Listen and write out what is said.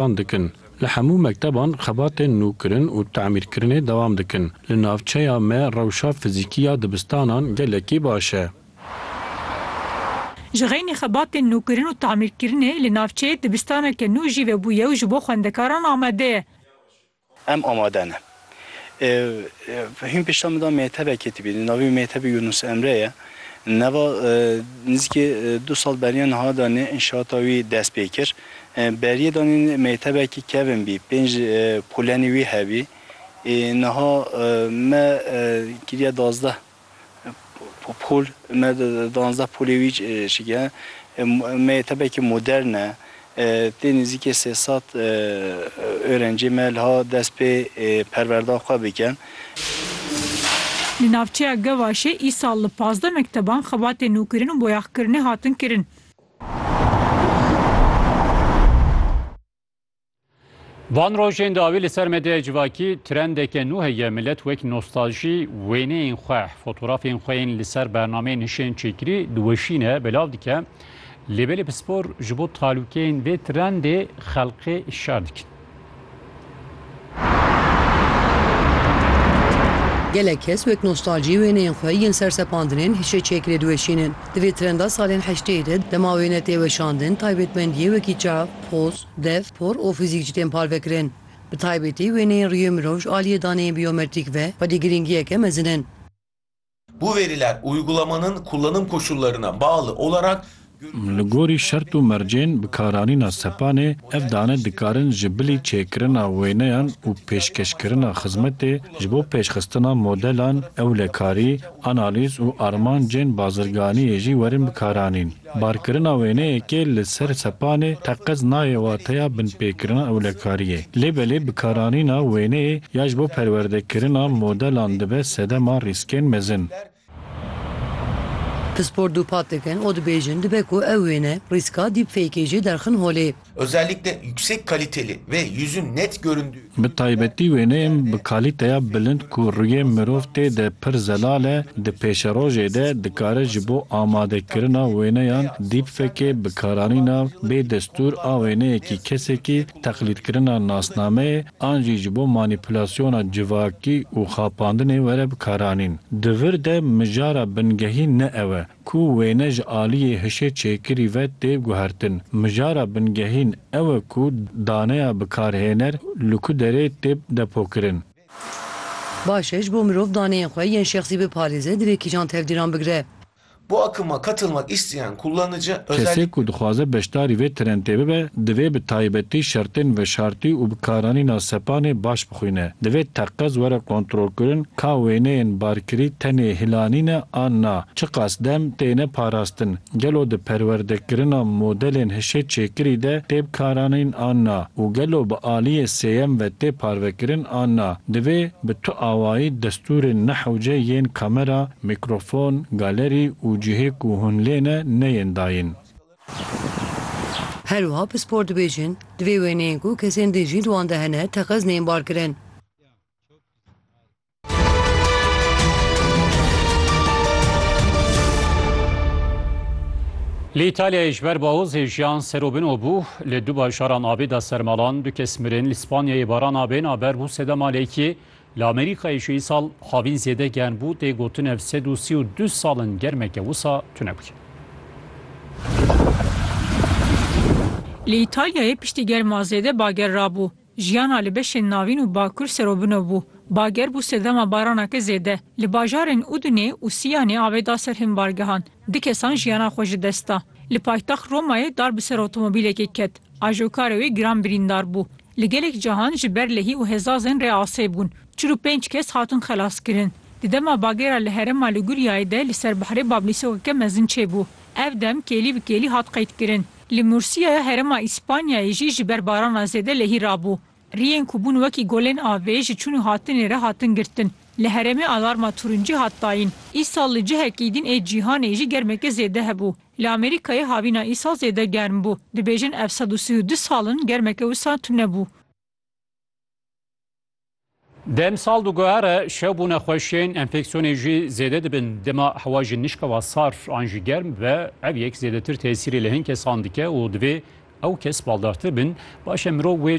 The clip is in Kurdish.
band dikin. Li hemû mekteban xebatên nûkirin û tamîrkirinê dewam dikin. Li navçeya me rewşa fizîkî ya dibistanan gelekî baş e. Ji xeynî xebatên nûkirin û tamîrkirinê li navçeyê dibistaneke nû jî vebûye û ji bo xwendekaran amade ye. Em amade ne. Hîn pişta min da mêtebekê dibînim. Navê wî mêtebê Yûnûs Emre ye. Nava nizîkî du sal beriya niha danî înşaata wî dest pê kir. Beriyê danî mêtebekî kevn bî. Pênc polenê wî hebî. Niha me kiriya dazdeh. Pol, me di duanzdeh polê wî çike. Me yê tepekî modern e. Tê nêzîkê sê sed oerencê me liha dest pê perwerda xwe bikin. Li navçeya Gevaşê îsal li pazdeh mekteban xebatên nûkirin û boyaxkirinê hatin kirin. Van rojên dawî li ser medyaya civakî trendeke nû heye milet wek nostaljî wêneyên xwe, fotorafên xwe yên li ser bernameyên hişên çêkirî diweşîne, belav dike. Lê belê pispor ji bo talûkeyên vê trendê xelkê şer dikin. Gelek kes wek nostalcî wêneyên xwe yên sersepandinên hişê çêkirê diweşînin. Di vê trenda salên heşteyê de dema wêne tê weşandin taybetmendiyê wekî çav, poz, dev, por û fizîk jî tên parvekirin. Bi taybetî wêneyên rûyê mirov ji aliyê daneyên bîyometrîk ve xwedî girîngiyeke mezin in. Bu veriler uygulamanın kullanım koşullarına bağlı olarak görüntü Li gorî şert û mercên bikaranîna sepanê, ev dane dikarin ji bilî çêkirina wêneyan û pêşkeşkirina xizmetê ji bo pêşxistina modelan, ewlekarî, analîz û armancên bazirganiyê jî werin bikaranîn. Barkirina wêneyekê li ser sepanê teqez nayê wateya binpêkirina ewlekariyê. Lê belê bikaranîna wêneyê ya ji bo perwerdekirina modelan dibe sedema rîskên mezin. Pispor dûpat dikin û dibêjin dibe ku ew wêne rîska deepfake-ê jî derxin holê. Özellikle yüksek kaliteli ve yüzün net göründüğü Bi filmlerde taybetî wêne em bi kalîteya bilind ku rûyê mirov tê de pir zelal e, di pêşerojê de dikare ji bo amadekirina wêneyan deepfake-ê bikaranîna bê destûr a wêneyekî kesekî, teqlîdkirina nasnameyê an jî ji bo manîpulasyona civakî û xapandinê were bikaranîn. Di vir de mijara bingehî ne ew e. Ku wêne ji aliyê hişê çêkirî ve tê guhertin. Mijara bingehîn ew e ku daneya bikarhêner li ku derê tê depokirin. Baş e ji bo mirov daneyên xwe yên şexsî biparêze divê kîjan tevdîran bigire? Bu akıma katılmak isteyen kullanıcı Kesê ku özellikle. dixwaze beşdarî vê trentê bibe divê bi taybetî şertên veşartî û bikaranîna sepanê baş. xwîne. Divê teqez were kontrolkirin ka wêneyên barkirî tenê hilanî ne an na, çiqas dem têne parastin, gelo di perwerdekirina modelên hişê çêkirî de tê bikaranîn an na û gelo bi aliyê sêyem ve tê parvekirin an na. Divê bi tu awayî destûrên nehewce yên kamera, mîkrofon, galerî û cihê ku hûn lê ne neyên dayîn. Her wiha pispor dibêjin, di vê wêneyê ku kesên din jî di wan de hene teqez neyên barkirin. Li Îtalyayê ji ber bawozê jiyan ser û bin û bû, li du bajaran avê da ser malan, du kes mirin, li Spanyayê barana bêna ber bû sedema lêkê, Li Amerîkayê ji îsal havîn zêde germ bû, tê gotin ev sed û sî û du sal in germeke wisa tune bûye. Li Îtalyayê piştî germa zêde bager rabû. Jiyana li beşên navîn û bakur serobino bû. Bager bû sedema baraneke zêde. Li bajarên Udinê û Siyanê avê da ser hin bargehan. Du kesan jiyana xwe ji dest da. Li paytext Romayê dar bi ser otomobîlekê ket. Ajokarê wê giran birîndar bû. Li gelek cahan ji ber lehî û hêzazên rê asê bûn. Çil û pênc kes hatin xelaskirin. Di dema bagêra li herêma Liguryayê de li ser bihrê bablîsokeke mezin çêbû. Ev dem kêlî bi kêlî hat qeydkirin. Li Mursiya ya herêma Îspanyayê jî ji ber barana zêde lehî rabû. Riyên ku bûn wekî golên avê ji çûn û hatinê re hatin girtin. Li herêmê alarma tûrincî hat dayîn. Îsal li cihekî din ê cîhanê jî germeke zêde hebû. Li Amerîkayê havîna îsal zêde germ bû. Dibêjin ev sed û sî û du sal in germeke wisa tune bû. Demsal di guhe re şew bûne xweş ên enfeksiyonê jî zêde dibin. Dema hewa jî nişkewa sar an jî germ ve ev yek zêdetir tesîrê li hin kesan dike û divê ew kes baldartir bin. Baş e mirov wê